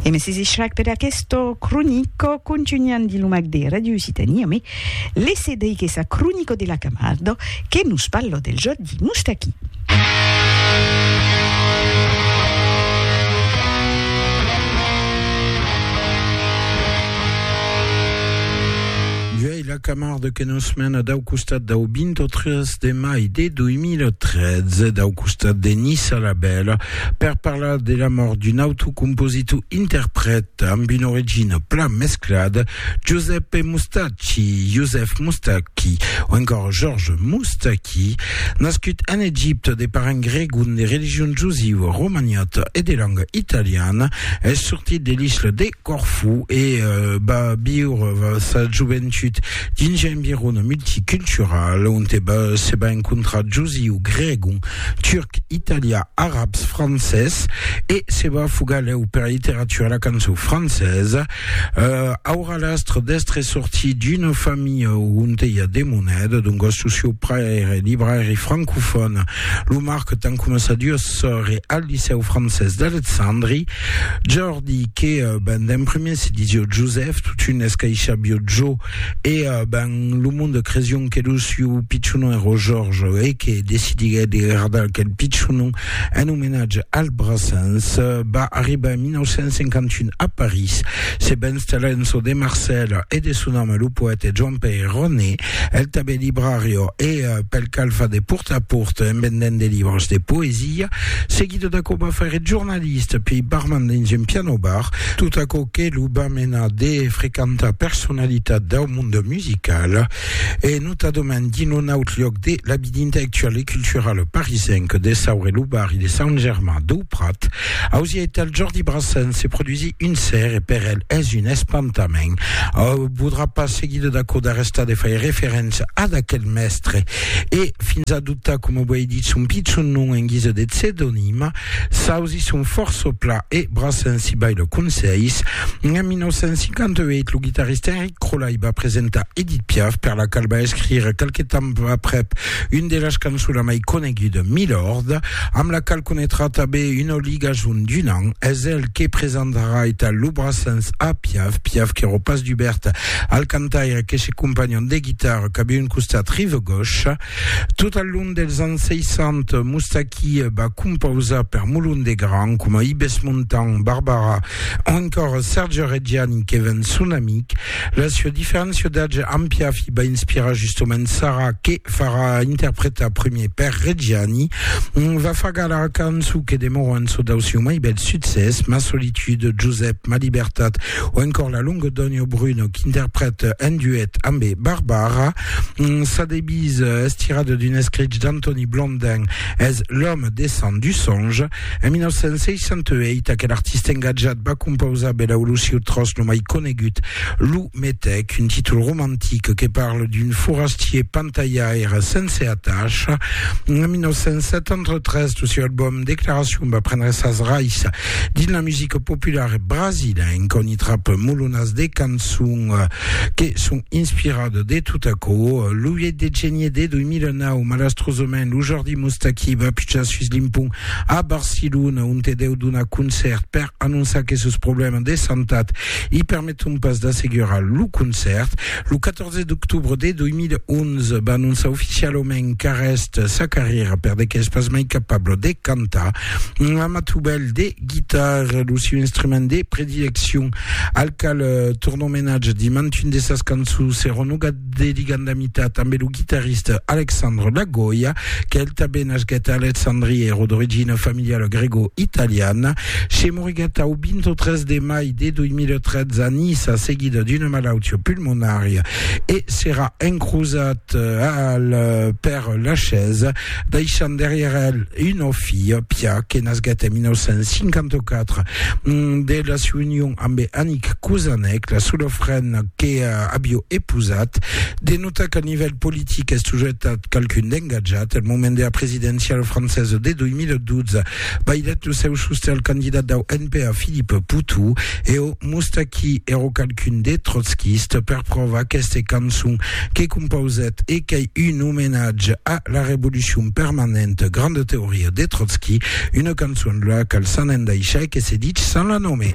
E me sesi shrag per aquesto cronico contugnant di lo mag de Radio Occitania, me lese dei que sa cronico de la Camardo que nos parlo del Jordi Moustaki. E la Camarde que nos mena dau costat dau 23 de mai de 2013, dau costat de Nissa la Bèla, per parlar de la mòrt d'un auto compositor interprèt amb una origina plan mesclada, Giuseppe Mustacchi, Joseph Moustaki, o encòra Georges Moustaki, nascut en Egipte de parents gregon de religion josiua romaniota e de langa italiana, es sortit de l'isla de. Corfú e va viure sa joventut dins un environ multicultural onte se va encontrar josiu, gregon, turc, italià, arabs, francés e se va fugar lèu pera literatura e la cançon francesa. Aurà l'astre d'èstre sortit d'una familha onte i a de moneda, doncas lo sieu paire èra librairi francofòn, lo marque tant coma sa duas sòrre al licèu francés d'Alexandri. Di que ben d'en prumèr se disió Josèf, totun escaishabió Jo, e ben lo monde cresión que lo siu pichonon èró Jòrge, e que decidiguèt de gardar aquel pichonon en omenatge al Brassens. Va arribar en 1951 a París, se va installar en çò de Marcèl e de son ame lo poète Joan-Pèir Roné, el tanben librarió, e pel cal fa de pòrta a pòrta en vendent de libres de poesia. Seguidó d'aquò va faire jornalièr. Especialista pei barman dins un piano bar, tot aquò que lo va menar de frequentar personalitat dau monde musical e notadament dins lo naut lloc de la vida intellectuala e culturala parisenca de Saur e lo barri de Sant Germain dau Prat. Ausiei tal Jordi Brassens se produsí un ser e per el es un espantament. Au podrà pas seguir de d'aquò d'arrestar de fai referéncia ad aquel mèstre e fins adoptar, coma uei dit, son pichon nom en guisa de pseudonima, S'ausi son fòrça pla e bra sensibai lo conselhs. En 1958, lo guitarrista Enric Crolai va presentar Edith Piaf, per la qual va escrire qualque temps aprèp un de las cançona mai coneguda, Milord, amb la qual conetrà tanben una ligason d'un an. Es el que presentarà eta lo braçens a Piaf, Piaf qu'èra pas dubèrt al cantaire que se companhon de guitarra cap un costat rive gauche. Tot al long dels ans 60, Moustaki va compausar per Molon de Gran, coma Ibes Montan, Barbara o encòra Serge Reggiani que ven son amic. La sua diferéncia d'atge amb Piafi va inspirar justomènt Sara que farà interpretar premier per Reggiani. Va far galar cançon que demòra un çò dau sieu mai bèl succès, Ma solitude, Josep, Ma libertat o encòr La longa dònha o Bruno qu'interprète en duet ambe Barbara. Sa devise es tirada d'un escrich d'Antoni Blondin, es L'homme descend du songe. En 1968, aquel artista engatjat va compausar bèla o lo sieu tròç lo mai conegut, Lo Metèc, un títol romantic que parla d'un forastier pantalhaire sense atacha. En 1973, lo sieu album Declaracion va prendre sas raisses dins la musica populara brasilenca, ont i trap molonas de cançons que son inspiradas De tot aquò, lo 8 de genier de 2009, malastrosament, lo Jordi Moustaki va pujar sus l'impont a Barcelona, onte deu donar concèrt per anonçar que sos problèmas de santat i permeton pas d'assegurar lo concèrt. Lo 14 d'octobre de 2011, va anonçar oficialament qu'arrèst sa carrièra perdeque es pas mai capable de cantar. Amatubèl de. guitarra, lo sieu instrument de predileccion, al qual torna omenatge dins mantun de sas cançons, serà Noga de Ligandamita, tanben lo guitarrista Alexandre Lagoya, qu'el tanben nasquèt a Alexandria, èra d'origina familiala grego-italiana, se moriguèt au 23 de mai de 2013 a Niça seguida d'una malautia pulmonària e serà encrosat al Père Lachaise. deishant darrièr el una filha, Pia, que nasguèt en 1954 de la siua union ambe Annick Kouzanec, la sola frena que avió epousat. De notar qu'al nivèl politic es toujours estat qualqu'un d'engatjat, al moment dera presidéncia francesa de 2012, Vaidet lo seu sosten al candidat dau NPA Philippe Poutou e o Moustaki ero qualqu'un de trotskiste per pròva aqueste cançon que compausèt e qu'ei un omenatge a la revolucion permanente, grande teoria de Trotsky, una cançon la qual s'an endaishà e que se ditz sans la nome.